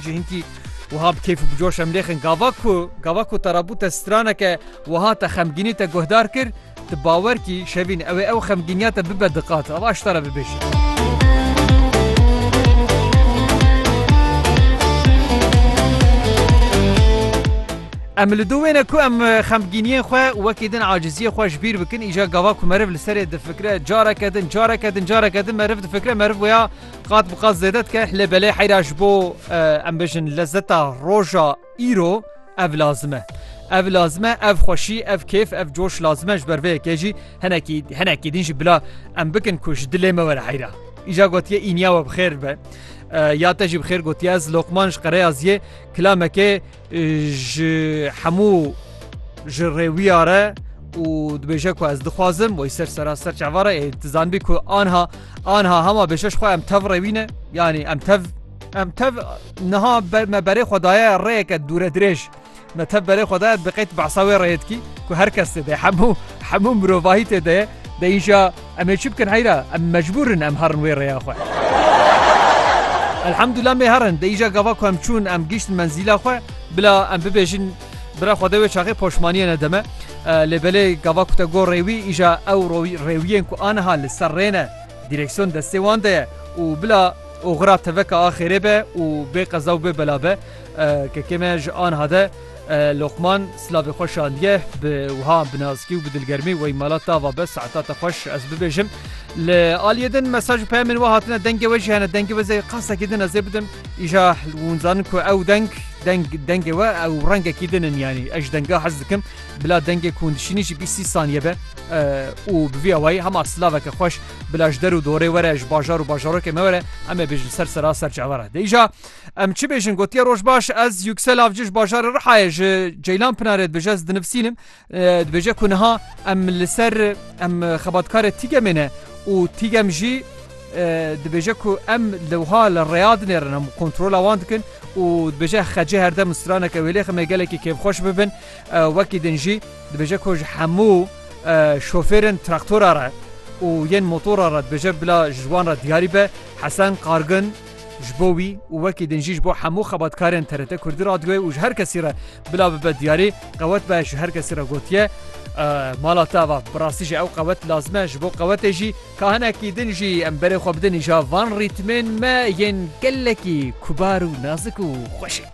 Ji hinkî wiha bi kêf û bi coş em lêxin gava ku gava ku te re bûte straneke wiha te xemgînî te guhdar kir, tu bawer kî şevîn ew ê ew xemgîniya te bibe diqat. Ava ji te re bibêjin. Em li dû wêne ku em xemgîniyên xwe û wekî din aciziyê xwe ji bîr bikin îja gava ku meriv li serê difikire careke din careke din careke din meriv difikire meriv wêya Qat bi qat zêde dike lê belê heyra ji bo em bijin lezeta roja îro ev lazim e. Ev lazim e ev xweşî ev kêf ev coş lazim e ji ber vê yekê jî henekî henekî din jî bila em bikin ku ji dilê me were heyra. Îja gotiye îniya we bi xêr be. Ya te jî bi xêr gotiye ez Lokman ji Qereya Ziyê kilamekê Ji hemû ji rê wî ya re û dibêje ku ez dixwazim wê ser sera ser çava re ê tu zanbî ku anha anha hema bêşeş xwe em tev rê wîne yanî em tev em tev niha me berê xwe daye rêyeke dûre dirêj me tev berê xwe daye diqeyt behsa wê rêyê dikî ku her kes tê de hemû hemû mirovahî tê de ye de îja Em ê çi bikin heyra? Em mecbûr in em herin wê rêya xwe. Elhemdullah mê herin, di îja gava ku em çûn em gihiştin menzîla xwe. Bila em bibêjin bira xwe de wê çaxê poşmaniyê nede me. Lê belê gava ku te got rê wî îja ew rêwiyên ku aniha li ser rê ne, dîreksiyon destê wan de ye û bila oxira teveka a xêrê be û bê qeza û bê bela be. Kekê me ji aniha de. Loqman silavê xwe şandiye bi wiha binazkî û bi dilgermî Wey mala te ava be saeta te xweş ez bibêjim. Li aliyê din mesaj û peyamên we hatine dengê we jî hene dengê we zê qasekî din ez ê bidim. Îja hûn zanin ku ew deng deng dengê we ew rengekî din in yanî ez ji denga hez dikim bila dengê ku hûn dişînî jî bîst sî saniye be û bi vî awayî hema silaveke xweş bila ji der û dorê were ji bajar û bajarokê me were em ê bêjin ser sera ser çavara de îja Em çi bêjin gotiye roj baş ez Yüksel Avcı ji bajarê Rihayê ji Ceylan Pınarê dibêje ez dinivsînim dibêje ku niha em li ser em xebatkarê tîgemê ne û tîgem jî dibêje ku em li wiha li rêya dinêrin em kontrola wan dikin û dibêje xecê herdem straneke wêlê ximê gelekî kêfxweş bibin wekî din jî dibêje ku ji hemû şofêrin traktora re û yên motora re dibêje bila ji wan re diyarî be Hesen Qargin Ji bo wî û wekî din jî ji bo hemû xebatkarên TRT Kurdî Radyoyê û ji her kesî re bila bibe diyarî, qewet be ji her kesî re gotiye, Mala te ava. Bi rastî jî ew qewet lazim e, ji bo qewetê jî ka hinekî din jî em berê xwe bidin îja van rîtmên me yên gelekî kubar û nazik û xweşik.